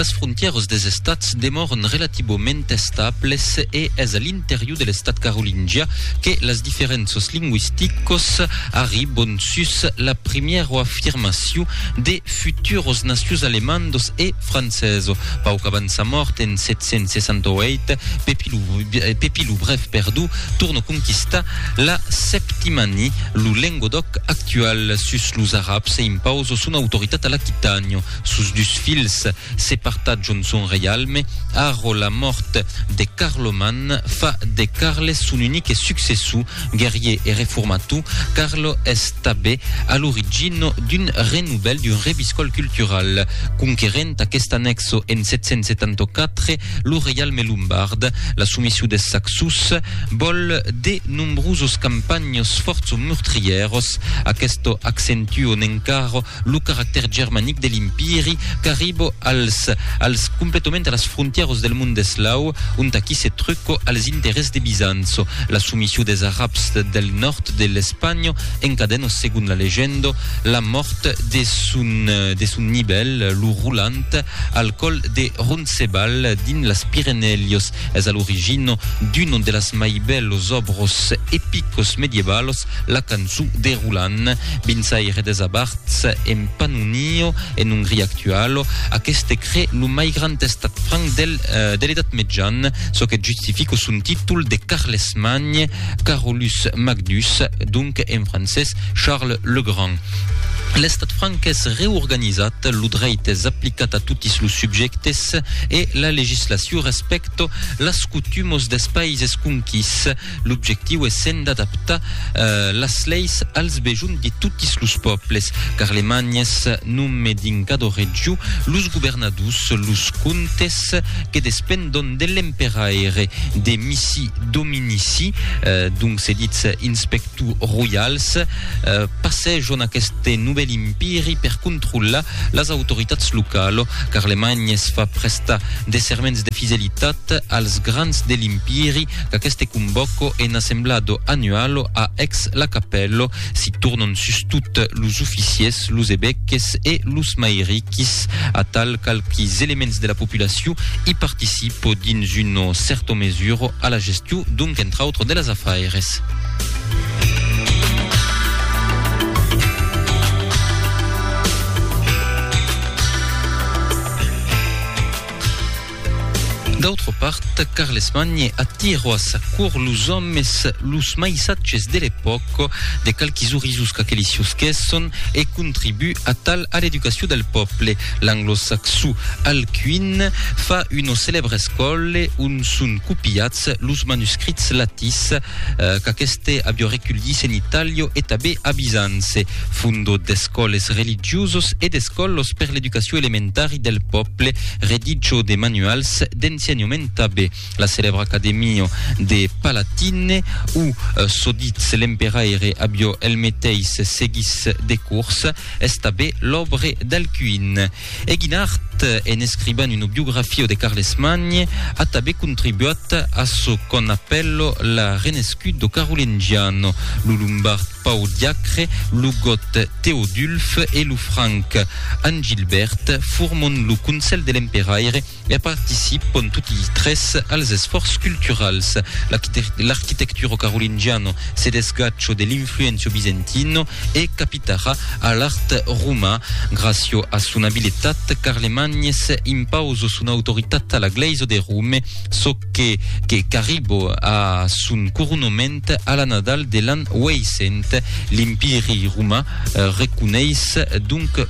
Las frontièras des estats demòran relativament estables e es a l'interior de l'estat carolingià que las diferénças lingüisticas arribon sus la primièra afirmacion de futuras nacions alemandas e francesa. Pauc abans sa mòrt en 768, Pepi lo Brève torna conquistar La Septimanie, lo Lengodoc actual, sus los Arabs e impauso son autoritat a l'Aquitànio. Sos dus filhs se partatjon son reialme. Arro la mòrt de Carloman, fa de Carles son unique successor, guerrier e reformator, Carlo es tabé a l'origina d'un renouvèl, d'un reviscòl cultural. Conquerent aquest annexo en 774, lo reialme lombard, la soumission des Saxos, vòl de nombrosos campanhs fòrts o meurtrièrs. Aquesto accentuon encara lo caractèr germanic de l'Impiri qu'arribo als als completament a las frontièros del mond eslau, ont aquí se truco als interès de Bizanço. La soumission des Arabs del nòrd de l'Espanha encadeno segon la legenda la mòrt de son de son nivèl, lo Roland, Al còl de Roncebal, dins las Pirenèlhos, es a l'origina d'uno de las mai bèlos òbros epicos medievalos, la cançó de Roland. Binsaire des Abards, en Pannonio, en Ongria actuala, aqueste cré lo mai grand estat franc del de l'Edat Mejana, çò que justifica son títol de Carlesmagne, Carolus Magdus, donc en francés Charles le Grand. L'estat franc es reorganizat, lo dreit es aplicat a totis los subjèctes e la legislacion respècto las cotumos des paises conquís. L'objectiu es sent d'adaptar las leis als bejuns de totis los pòbles. Carlemany es nome dins cada region los governadors, los comtes, que despendon de l'emperaire, de Missi Dominici, donc se ditz inspector, Tout royals passèjon aqueste novèl impiri per controllar las autoritats localo. Carlemany es fa prestar de serments de fidelitat als grans de l'impiri qu'aqueste convòco en assemblado annualo a Aix-la-Capelle. S'i tornon sustot los oficiers, los evèques e los mairiquis. Atal qualques elements de la populacion i participo dins una cèrto mesura a la gestion donc entre autres de las afaires. D'autra part, Carlesmagne attirò a sa cour los òmes los mai satges de l'epòca, de qualques orisos qu'aqueli siusquèsson, e contribu a tal a l'educacion del pòble. L'anglosaxo Alcuin fa una celèbra escòle ont son copiats los manuscrits latís qu'aqueste avió reculhís en Italio e tabé a Bizançe, fundó d'escòles religiosos e d'escòlos per l'educacion elementari del pòble, redigó de manuals d'ensenhament tabé la celèbra Academio de Palatine, o çò ditz l'emperaire avió el meteis seguís de cors, es tabé l'òbre d'alcuin. E Guinart, en escribant una biografia de Carles Magne, a tanben contribuat a çò qu'òm apèla la renescuda carolingiana, lo lombard Pau Diacre, lo gòt Teodulf e lo franc Angilbèrt forman lo Consèl de l'Emperaire, E participon toti tres als esfòrç culturals. L'arquitecturo carolingiano se desgacho de l'influencio bizentino e capitara a l'art roman. Gracio a son abiletat, Carlemagnes impauso son autoritat a la glèisa de Rome, çò que que qu'arribo a son coronoment a la Nadal de l'an 800. L'Empiri roman reconeis donc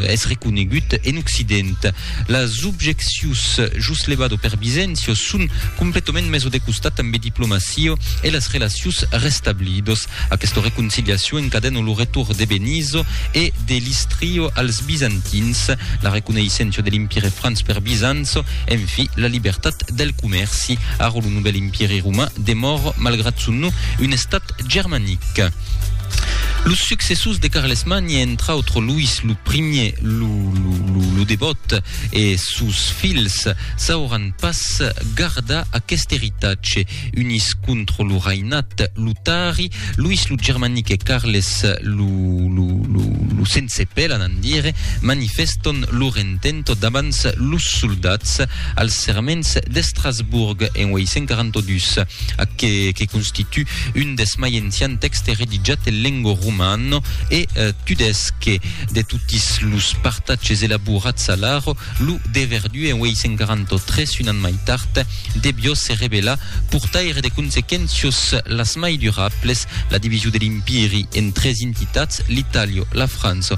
es reconegut en Occident. Las objeccions jos levado per Bisencio son completament meso de costat ambe diplomacio e las relacions restablidos. Aquesta reconciliacion encadena lo retorn de Benizo e de l'Istrio als Bizantins, la reconeissença de l'Empire Franc per Bisanço, enfi, la libertat del comèrci. Ara lo novèl Empiri Roman demòra, malgrat son nom, un estat Europe germanic. Los successors de Carlesmagne, entre autres Louis lo Primier, lo Devòt e sos filhs, sauràn pas gardar aqueste eritatge. Unís contra lo rainat lotari, Louis lo Germanic e Carles lo Sense Pela, n'an dire, manifèstan lor intento davant los soldats, als serments d'Estrasburg en 842, ac que que constitu un deth mai ancian tèxte reditjat en lengua romana e tudesque de totis los partatges elaborats a l'Arro, lo de Verdú en 843, un an mai tard, devió se revelar portaire de consequéncios las mai durables, la division de l'Empiri en tres intitats, l'Itàlia, la França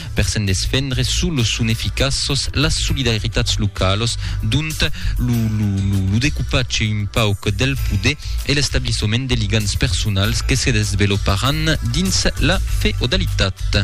per se'n desfendre suu los son eficaços las solidaritats localos, dont lo lo lo lo decupatge un pauc del poder e l'establissement de ligams personals que se desveloparàn dins la feodalitat.